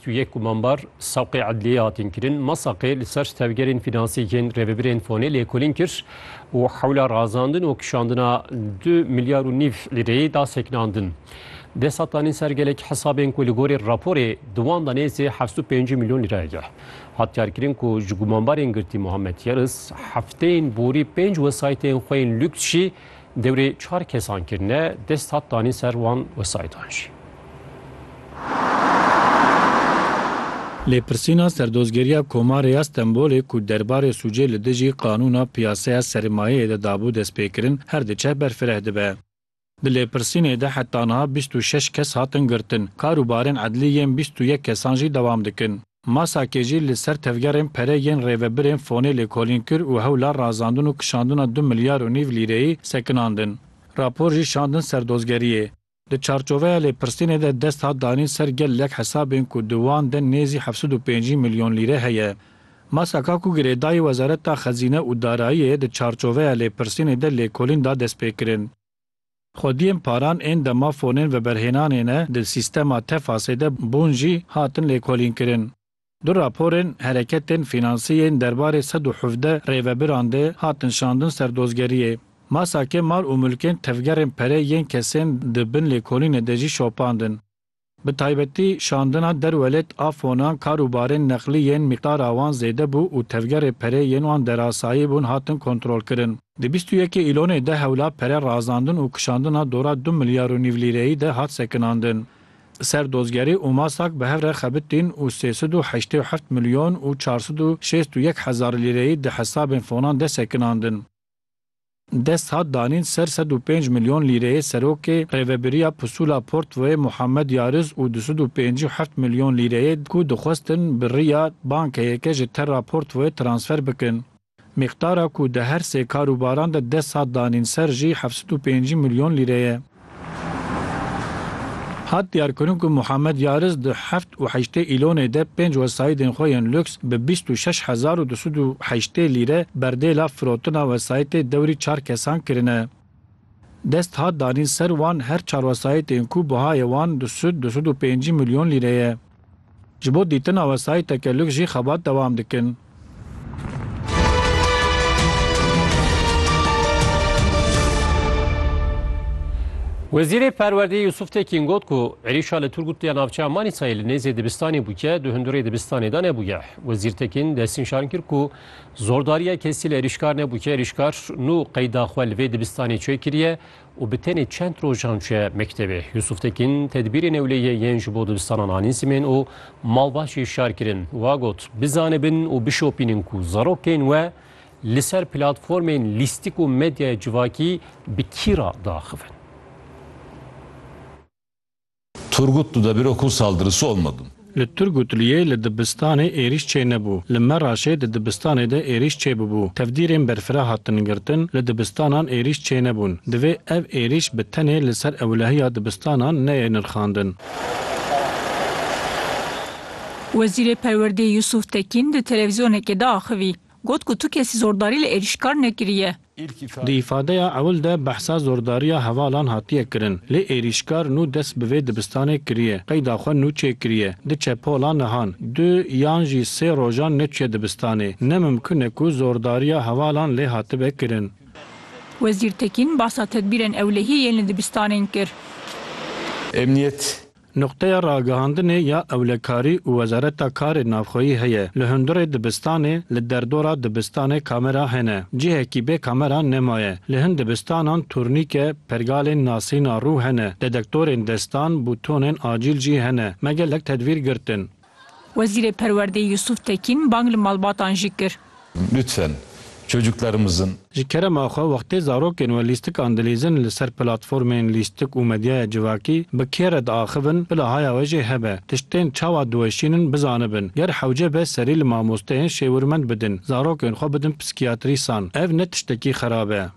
Tu yê ku mambar saqê edliyê hatin kirin, ma saqê li ser tevgerên finansiyek yên rêvebirên fonê lêkolîn kir û hewla razandin û kişandina du milyar û nîv lîreyê da sekinandin. Dê setanîn ser gelek hesabên ku li gorî raporê di wan de nêzî heft û pêncî milyon lîreyeke hat diyarkirin ku ji gumanbarên girtî Muhammed Yildiz hefteyên borî pênc wesayîtên xwe yên lûks jî Dewrê çar kesan kirine dest hat danîn ser wan wesayîdan jî. Lêpirsîna Serdozgeriya Komarê ya Stenbolê ku derbarê sûcê li dijî qanûna piyaseya sermayeyê de dabû destpêkirin her diçe berfireh dibe. Di lêpirsînê de heta niha bîst û şeş kes hatin girtin. Kar û barên edlî yên bîst û yek kesan jî dewam dikin. Masakê jî li ser tevgerên pere yên rêvebirên fonê lêkolîn kir û hewla razandin û kişandina du milyar û nîv lîreyî sekinandin. Rapor jî şandin ser dozgeriyê. Di çarçoveya lêpirsînê de dest hat danîn ser gel lek hesabên ku di wan de nêzî heft sed û pêncî milyon lîre heye. Masaka ku girêdayî Wezareta Xezîne û Darayiyê di çarçoveya lêpirsînê de lêkolîn da destpêkirin. Xwediyên paran ên dema fonên veberhênanê ne di sîstema TEFAS'ê de bûn jî hatin lêkolînkirin. Du raporên hereketên fînansî yên derbarê sed û hevdeh rêvebiran de hatin şandin ser dozgeriyê. Masakê mal û milkên tevgerên perê yên kesên di bin lêkolînê de jî şopandin. Bi taybetî şandina derwelêt a fonan kar û barên neqlî yên mîqdara wan zêde bû û tevgerê perê yên wan derasayî bûn hatin kontrolkirin. Di bîst û yekê Îlonê de hewla pere razandin û kişandina dora du milyar û nîv lîreyî de hat sekinandin. Li ser dozgerî û masak bi hev re xebitîn û sê sed û heştê û heft milyon û çar sed û şêst û yek hezar lîreyî di hesabên fonan de sekinandin. Dest hat danîn ser sed û pênc milyon lîreyê serokê Rêvebiriya Pusula Portvoyê Muhammed Yariz û du sed û pêncî û heft milyon lîreyê ku dixwestin bi riya bankeyeke ji Terra Portvoyê transfer bikin. Mîqdara ku di her sê karûbaran de dest hat danîn ser jî heft sed û pêncî milyon lîre ye. Hat diyarkirin ku Muhammed Yariz di heft û heştê îlonê de pênc wesayîdên xwe yên luks bi bîst û şeş hezar û du sed û heştê lîre berdêla firotina wesayîtê dewrî çar kesan kirine. Dest hat danîn ser wan her çar wesayîtên ku bihayê wan du sed, du sed û pêncî milyon lîre ye. Ji bo dîtina wesayî tekelûk jî xebat dewam dikin. Wezîrê Perwerdeyê Yusuf Tekîn got ku êrîşa li Turgut ya navçeya Manîsayê li nêzê dibistanê bûke du hundirê dibistanê de nebûye. Wezîr Tekîn destnîşan kir ku zordariya kesî li êrîşkar nebûke, êrîşkar nû qeyda xwe li vê dibistanê çêkiriye û bi tenê çend rojan çûye mektebê. Yusuf Tekin tedbîrê newleyê yên ji bo dibistanan anîn simên û malbaşê şar kirin. Wa got, Bizanibin û bişopînin ku zarokên we li ser platformên lîstik û medyaya civakî bi kî re diaxivin. Turgut tu de biro ku saldırısı olmadın. Li Turgutliyê li dibistanê êrîş çê nebû. Li Meraşê di dibistanê de êrîş çê bûbû. Tevdîrên berfira hatin girtin, li dibistanan êrîş çê nebûn. Divê ev êrîş bi tenê li ser ewlehiya dibistanan neyê nirxandin. Wezîrê Perwerdeyê Yusuf Tekîn di televîzyonekê de axivî. Got ku tu kesî zordarî li êrîşkar nekiriye. Di îfadeya ewil de behsa zordariya hevalan hatiye kirin. Lê êrîşkar nû dest bi vê dibistanê kiriye. Qeyda xwe nû çêkiriye. Diçe pola nihan. Du yan jî sê rojan neçûye dibistanê. Ne mimkun e ku zordariya hevalan lê hatibe kirin. Wezîr Tekîn bahsa tedbîrên ewlehiyê yên li dibistanên kir. Emniyet Nuqteya ragihandinê ya ewlekarî û Wezareta Karê Navxweyî heye. Li hundirê dibistanê, li derdora dibistanê kamera hene. Cihekî bê kamera nemaye. Li hin dibistanan turnîke, pergalên nasîna rû hene. Dedektorên destan, bûtonên acîl jî hene. Me gelek tedbîr girtin. Wezîrê Perwerdeyê Yusuf Tekîn bang li malbatan jî kir. Lütfen çocuklarımızın. Ji kerema xwe wextê zarokên we lîstikan dilîzin li ser platformên lîstik û medyaya civakî bi kê re diaxivin bila haya we jê hebe tiştên çawa diweşînin bizanibin ger hewce be serî li mamosteyên şêwirmend bidin zarokên xwe bidin psîkiyatrîsan ev ne tiştekî xerab e.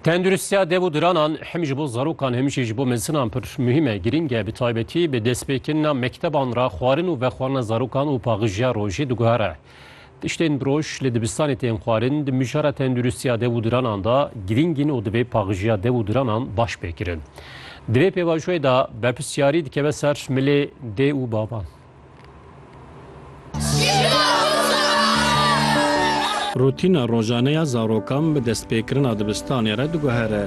Tenduristiya dev û diranan hem ji bo zarokan hem jî ji bo mezinan pir muhîm e, girîng e bi taybetî bi destpêkirina mekteban re xwarin û vexwarina zarokan û paxijiya rojê diguhere. Tiştên bi roj li dibistanê tên xwarin di mijara tenduristiya dev û diranan de girîng in û divê paxijiya dev û diranan baş pêkirin. Di vê pêvajoyê de berpirsyarî dikeve ser milê dê û bavan. Rutîna rojane ya zarokan bi destpêkirina dibistanê re diguhere.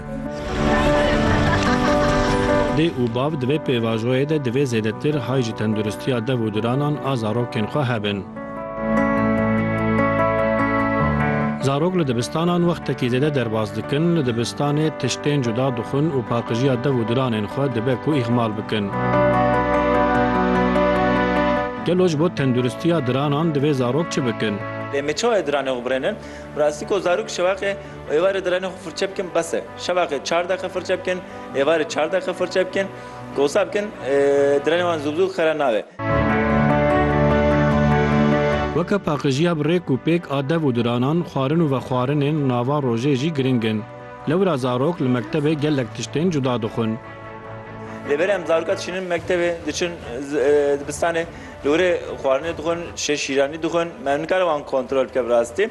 Dê û bav di vê pêvajoyê de divê zêdetir hay ji tenduristiya dev û diranan a zarokên xwe hebin. Zarok li dibistanan wextekî zêde derbas dikin, li dibistanê tiştên cuda dixwin û paqijiya dev û diranên xwe dibe ku îhmal bikin. Gelo ji bo tenduristiya diranan divê zarok çi bikin? Lê me çawa diranê xwe birênin? Bi rastî ku zarok şevaxê û êvarê diranê xwe firçe bikin bes e. Şevaxê çar deqe firçe bikin, êvarê çar deqe firçe bikin. Kosa bikin trenê wan zû bi zû xera nabe. Weke paqijiya bi rêk û pêk a dev û diranan, xwarin û vexwarinên nava rojê jî giring in. Lewra zarok li mektebê gelek tiştên cuda dixwin. Lê berê em zaroka dişînin mektebê, diçin dibistanê li wirê xwarinê dixwin, şê şîranî dixwin. Me nikare wan kontrol bike bi rastî.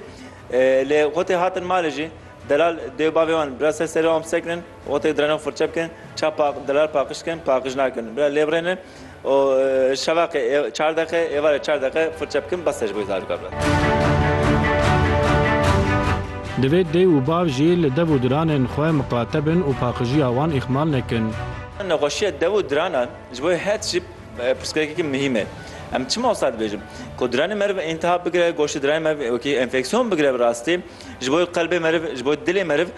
Lê xwe tê hatin malê jî delal dê û bavê wan bi ra ser serê wan bisekinin. Otê direnan furçe bikin, çav pa dirar paqij dikin, paqij nakin. Bila lê birêne û şevaqê ê çar deqe, êvarê çar deqe furçe bikin bes e ji bo wî zarok bibire. Divê dê û bav jî li dev û diranên xwe miqate bin û paqijiya wan îxmal nekin. Nexweşiya dev û diranan ji bo her tiştî pirsgirêkeke muhîm e. Em çima wisa dibêjin? Ku diranê me re bi întiha bigire, goştê diranê me wekî enfeksiyon bigire bi rastî Ji bo qelbê meriv, ji bo dilê meriv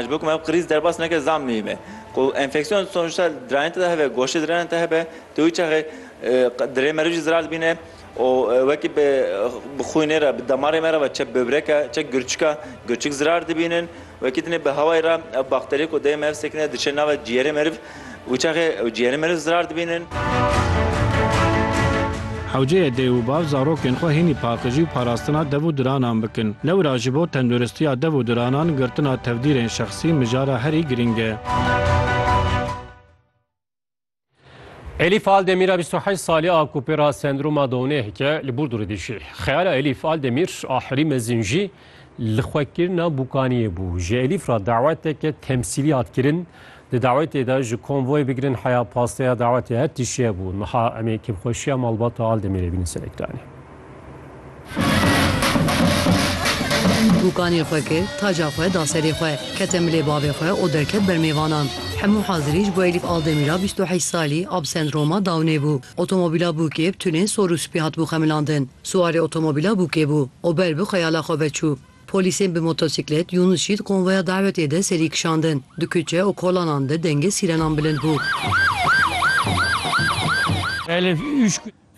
ji bo ku meriv krîz derbas neke zam mî be. Ku enfeksiyon sonuçta dirayên te de hebe, goştê dirayên te hebe, tu wî çaxê dirê meriv jî zirar dibîne û wekî bi xwînê re, bi damarê me re ve çek böbrek e, çek girçik e, girçik zirar dibînin. Wekî dinê bi hewayê re ev bakterî ku dê mev sekine diçe nava ciyerê meriv û çaxê ew ciyerê meriv zirar dibînin. Hewceyê dê û bav zarokên xwe hînî paqijî û parastina dev û diranan bikin. Lewra ji bo tenduristiya dev û diranan girtina tevdîrên şexsî mijara herî girîng e. Elîf Aldemîra bîst û heşt salî a ku pêra sendroma Downê heke li Burdurê dijî. Xeyala Elîf Aldemîr a herî mezin jî li xwekirina bûkaniyê bû. Ji Elîf re daweteke temsîlî hat kirin. Di dawetê de ji konvoyê bigirin heya pasteya dawetê her tişt heye bû. Niha em ê kêfxweşiya malbata Aldemîrê bînin ser ekranê. Bûkanê xwe kir, taca xwe da serê xwe, kete milê bavê xwe û derket ber mêvanan. Hemû hazirî ji bo Elîf Aldemîra bîst û heşt salî a bi sendroma Downê bû. Otomobîla bûkê bi tunên sor û spî hatibû xemilandin. Siwarê otomobîla bûkê bû û ber bi xeyala xwe ve çû. Polîsên bi motosîklet Yûnûs Şît konvoya dawetê de serî kişandin. Di kuçe û kolanan de dengê sîrenan bilind bû.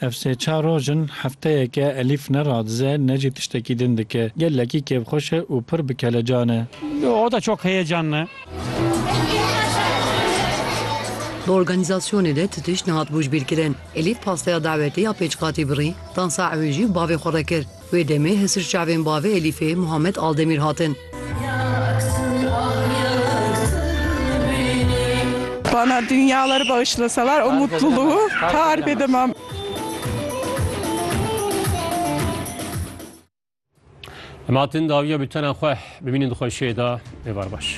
Ev sê çar roj in hefteyeke Elîf ne radize ne jî tiştekî din dike. Gelekî kêfxweş e û pir bi kelecan e. O da çok heyecanlı. Di organîzasyonê de ti tişt nehat bûjbîrkirin. Elîf pasteya dawetê ya pêçqatî birî, dansa ewê jî bavê xwe re kir. Wê demê hesir çavên bavê Elîfê Muhammed Aldemîr hatin. Bana dünyaları bağışlasalar o mutluluğu tarif edemem. Em hatin dawiya bültena xwe bibînin di xweşiyê de êvar baş.